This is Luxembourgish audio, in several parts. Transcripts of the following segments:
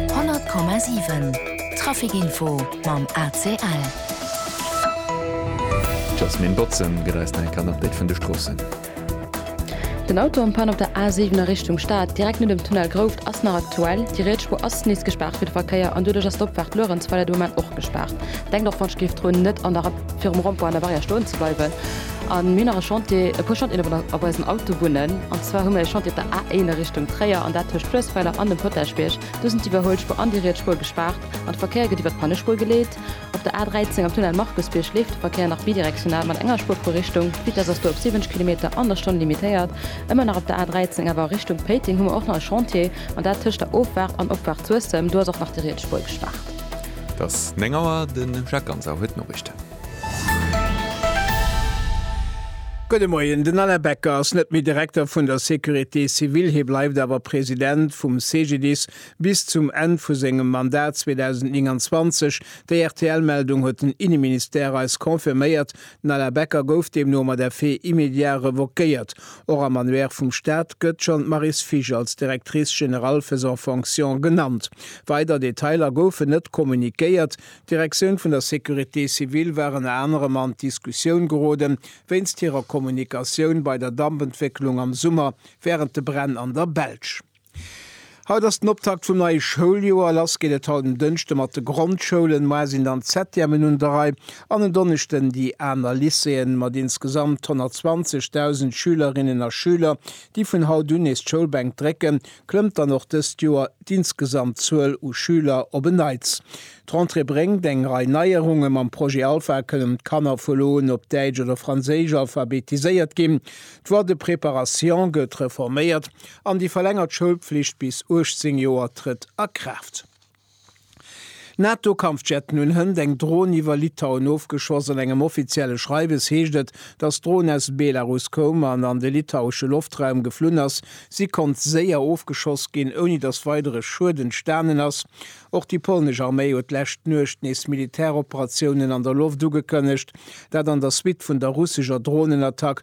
100,7 Trafic Info mam ACL. D'Jasmine Botzen gëtt eis nach eng Kéier en Update vun de Stroossen. Den Auto am Pan op der A7 a Richtung Stad, direkt no dem Tunnel Grouft, ass nach aktuell. Déi riets Spuer ass nees gespaart fir de Verkéier an doduerch ass d'Opfahrt Luerenzweiler de Moment och gespaart. Denkt och wann Skeefdrun net an der. virum Rond-point an der Barrière stoen ze bleiwen an mir hunn nach e Chantier, e puer Chantieren op op eisen Autobunnen an zwar hu mir e Chantier op der A1 a Richtung Tréier an dat tëscht Fluessweiler an dem Potagebierg. Do sinn d'Iwwerhuelspuer an déi riets Spuer gespaart an de Verkéier gëtt iwwer d'Pannespuer geleet. Op der A13 am Tunnel Markusbierg leeft de Verkéier nach bidirektional mat enger Spuer pro Richtung. D'Vitess ass do op 70 Kilometer an der Stonn limitéiert. Ëmmer nach op der A13 awer a Richtung Péiteng hu mer och nach e Chantier an dat tëscht der Offaart an Opfaart Suessem, do ass och nach déi riets Spuer gespaart. Et ass 9 Auer, de Jacques Ganser huet d'Noriichten. Gudde Moien, Den Alain Becker ass net méi Direkter vun der Sécurité civile, hie bleift awer President vum CGDIS bis zum Enn vu sengem Mandat 2029. Déi RTL-Meldung huet den Inneministère eis confirméiert, D'Nella Becker gouf deemno mat effet immédiat revoquéiert. Och am Annuaire vum Staat gëtt schonn d'Maryse Fisch als Directrice générale faisant fonction genannt. Weider Detailer goufen net kommuniquéiert. D'Direktioun vun der Sécurité civile war ënner anerem an d'Diskussioun gerode wéinst hirer Kommunikatioun bei der Dampentwécklung am Summer wärend de Bränn an der Belsch. Haut ass den Optakt vum neie Schouljoer. Lass geet et haut um Dënschde mat de Grondschoulen. Moar sinn dann d'ZTEMen un der Rei an en Donneschden déi aner Lycéeën. Mat insgesamt 120.000 Schülerinnen a Schüler, déi vun haut un nees d'Schoulbänk drécken, klëmmt dann och dëst Joer d'insgesamt Zuel u Schüler op en Neits. D'Rentrée bréngt eng Rei Neierunge. Mam Projet Alpha kënnen d'Kanner vu lo un op Däitsch oder Franséisch alphabetiséiert ginn. D'Voie de préparation gëtt reforméiert. An déi verlängert Schoulpflicht bis 18 Joer trëtt a Kraaft. NATO-Kampfjetten hunn hënt eng Dron iwwer Litauen ofgeschoss. An engem offizielle Schreiwes heescht et, datt d'Dron aus Belarus koum an an de litauesche Loftraum geflunn ass. Si konnt séier ofgeschoss ginn, ouni datt weidere Schued entstanen ass. Och déi polnesch Arméi huet d'lescht d'Nuecht nees Militäroperatiounen an der Loft ugekënnegt, dat an der Suite vun der russescher Dronenattack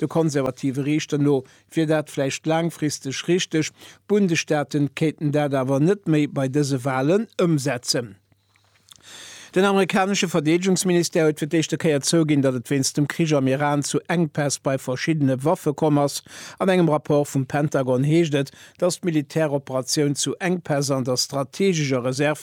Der konservative Riichter no wier dat vläicht laangfristeg richteg, d'Bundesstaate kéinten dat awer net méi bei dëse Walen ëmsetzen. Den amerikanesche Verdeedegungsministère huet fir d'éischte Kéier zouginn, datt et wéinst dem Krich am Iran zu Enkpäss bei verschiddene Waffe komm ass. An engem Rapport vum Pentagon heescht et, datt d'Militäroperatioun zu Enkpäss an der strateegescher Reserv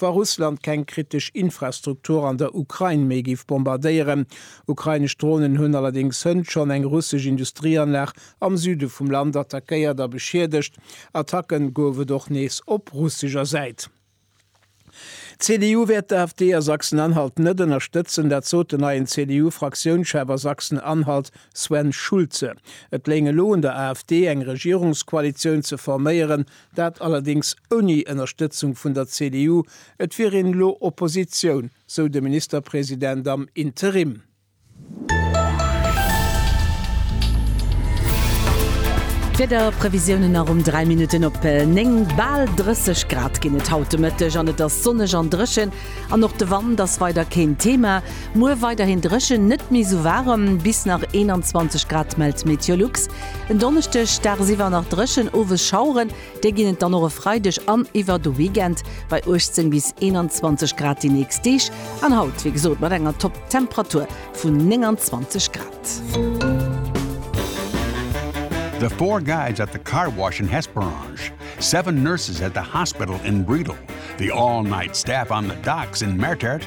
wa Russland keng kritesch Infrastruktur an der Ukrain méi géif bombardéieren. Ukrainesch Dronen hunn allerdéngs hënt schonn eng russesch Industrieanlag am Süde vum Land attackéiert a beschiedegt. Attacke gouf et och nees op russescher Säit. D'CDU wäert d'AfD a Sachsen-Anhalt net ënnerstëtzen, dat sot den neien CDU-Fraktiounschef a Sachsen-Anhalt Sven Schulze. Et léing elo un der AfD, eng Regierungskoalitioun ze forméieren, Dat allerdéngs ouni Ënnerstëtzung vun der CDU. Et wier een elo Oppositioun, sou de Ministerpresident am Interim. D'Wiederprevisiounen nach um 3 Minutten op 9. Bal 30 Grad ginn et haut de Mëtteg an et ass sonneg an dréchen. An och de Wand ass weider keen Thema. Muer weiderhin dréchen, net méi sou waarem, bis nach 21 Grad, mellt Meteolux. En Donneschdeg dagsiwwer nach dréchen, owes Schaueren, déi ginn et dann och e Freideg an iwwer de Weekend bei 18 bis 21 Grad déi nächst Deeg. An haut, wéi gesot, mat enger Topptemperatur vun 29 Grad. The four guys at the car wash in Hesperange, seven nurses at the hospital in Bredal, the all-night staff on the docks in Mertert,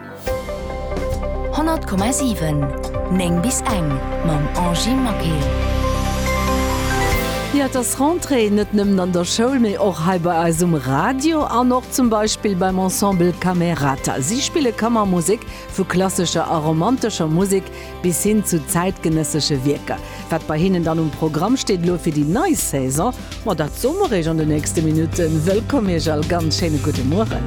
100,7 9 bis eng mam Angie Maquet. Jo et ass Rentrée, net nëmmen an der Schoul, mee och hei bei eis um Radio an och zum Beispill beim Ensemble Camerata. Si spille Kammermusek, vu klassescher a romantescher Musek bis hin zu zäitgenëssesche Wierker. Wat bei hinnen dann um Programm steet elo fir déi nei Saison, ma dat soe mer iech an de nächste Minutten. Wëllkomm iech all, ganz schéine gudde Mueren.